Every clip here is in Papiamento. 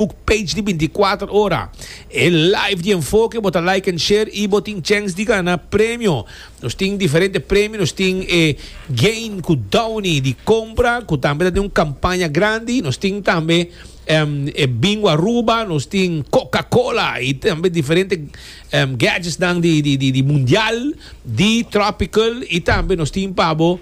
Facebook page di binticuater ora. E live di enfoke bo ta like en share y bo tin chens di gana premio. Nos tin diferente premio, nos tin e gain cu Downy di compra cu tambe ta den un campaña grandi, nos tin tambe e Bingo Aruba, nos tin Coca Cola y tambe diferente gadgetsnan di mundial di tropical y tambe nos tin pa bo.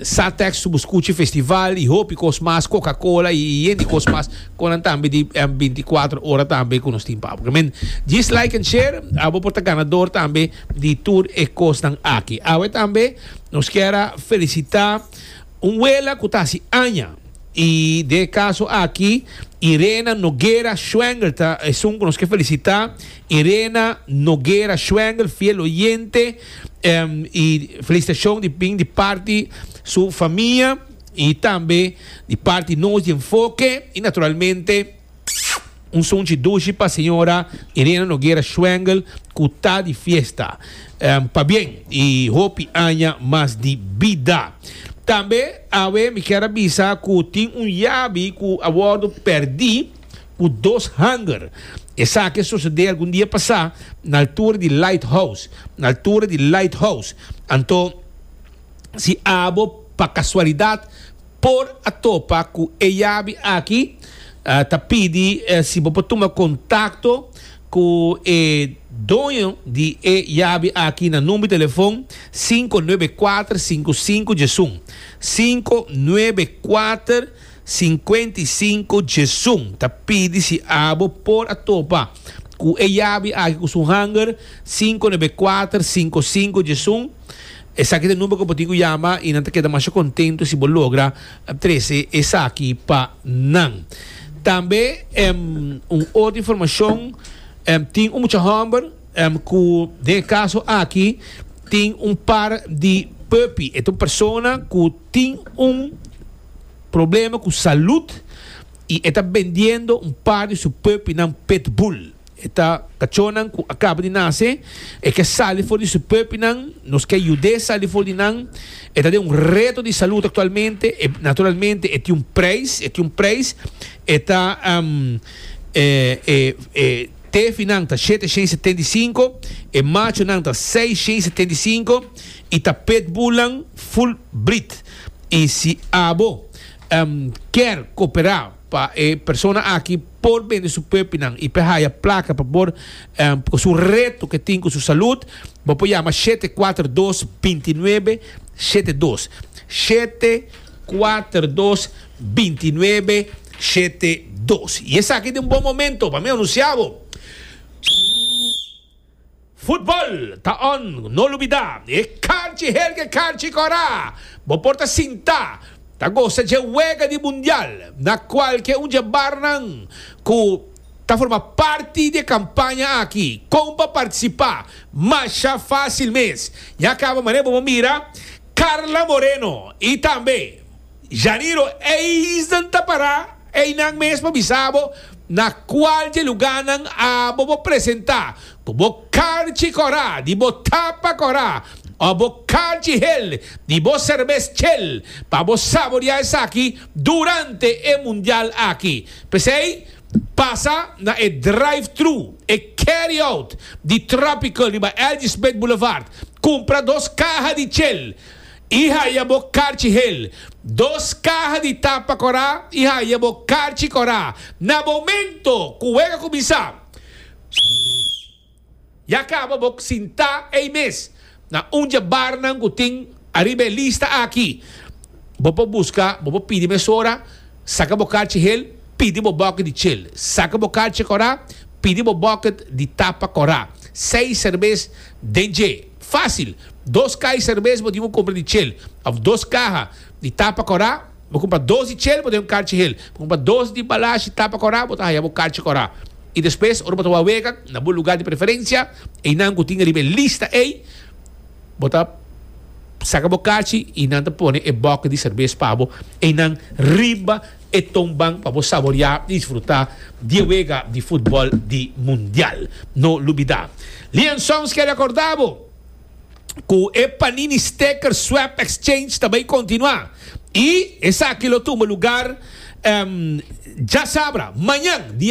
Sa teksto bu skuchi festival i hopi kos mas koka kola i yen di kos mas kon nan tambe di binti kuater ora tambe ku nos tin pau ok men jis like en share a bo por ta ganador tambe di tur e kosnan aki awe tambe nos kier a felisita un wela ku ta hasi aña i den e kaso aki Irena Noguera Schwengel ta esun ku nos ke felisita. Irena Noguera Schwengel fiel oyente y felicitacion di bin di parti su famia y tambe di parti nos di Enfoke y naturalmente un sunchi dushi pa señora Irena Noguera Schwengel cu ta di fiesta pa bien y hopi aña mas di bida. Tambe awe mi kier a bisa cu tin un yabi cu a wordo perdi. ku dos hanger. Esaki a sosodé algun dia pasá na altura di Lighthouse, na altura di Lighthouse. Anto, si abo pa kasualidat por a topa ku e yabi aki, ta pidi si bo por tuma kontakto ku e doño di e yabi aki na number di telefon sinku nuebe kuater sinku sinku djesun, sinku nuebe kuater. Sinkuenta i sinku Jesun ta pidi si abo por a topa ku e yabi aki ku su hanger, sinku nebe kuater sinku sinku Jesun, Esaki ta number ku bo tin ku yama i nan ta keda masha kontentu si bo logra trese esaki pa nan. Tambe un otro informashon, tin un mucha hòmber ku den e kaso aki tin un par di puppy, e ta un persona ku tin un. problema cu salud y e ta bendiendo un par di su pupinan Pitbull. E ta cachonan cu a caba di nace, e ke sali for di su pupinan, nos ke yud'é sali for di nan. E ta den un reto di salud actualmente, e naturalmente e tin un prijs, e tin un prijs. E ta e tefinan ta shete shen setenta y cinco, e machonan ta seis shen setenta y cinco y ta Pitbullnan full breed. I si abo kier koperá pa e persona aki por bende su puepinan i por haya plaka pa por ku su reto ke tin ku su salud, bo por yama shete kuater dos binti nuebe shete dos, shete kuater dos binti nuebe shete dos. I esaki ta un bon momento pa mi anunsiabo. Futbol ta un no lubidá. E kanchi Helge Kanchi Kòrá bo por ta sinta ta gosa dje wega di Mundial na kual ke un dje barnan ku ta forma parti di e kampaña aki kon pa partisipá masha fásil mes. Ya kaba mané bo por mira Carla Moreno i tambe. Janeiro, Eisen ta pará einan mes pa bisa bo na kual dje lugánan abo bo presentá ku bo karchi kòrá di bo tapa kòrá òf bo karchi hel di bo serbes chel pa bo saboriá esaki durante e mundial aki. P'esei pasa na e drive-thru, e carry-out, di Tropical riba Elgee Smit Boulevard, kumpra dos kaha di chel I haya bo karchi hel, dos kaha di tapa korá i haya bo karchi korá. Na momento ku wèk a kuminsá ya kaba bo sintá ei mes na un dje barnan ku tin ariba e lista aki. Bo por buska, bo por pidi mesora, saka bo karchi hel, pidi bo bòkit di chel. Saka bo karchi korá, pidi bo bòkit di tapa korá. Seis serbes den dje. Fácil. Dos kai serves bo tin cu cumpra di chel. Of dos caha di tapa cora. Bo cumpra dos di chel bo ta haya un carchi hel. Bo cumpra dos di balash di tapa cora bo ta haya bo carchi cora. Y despues ora bo ta wak wega na bo lugar di preferencia einan cu tin riba e lista ei bo ta saca bo carchi y nan ta pone e bucket di serves pa bo einan riba E tonban pa bo saboreá i disfrutá di e wega di futbòl di Mundial. No lubidá! Lian Sons ke rekordá bo ku e Panini Sticker Swap Exchange ta bai kontinuá i esaki lo tumba lugar, djasabra, mañan, dia.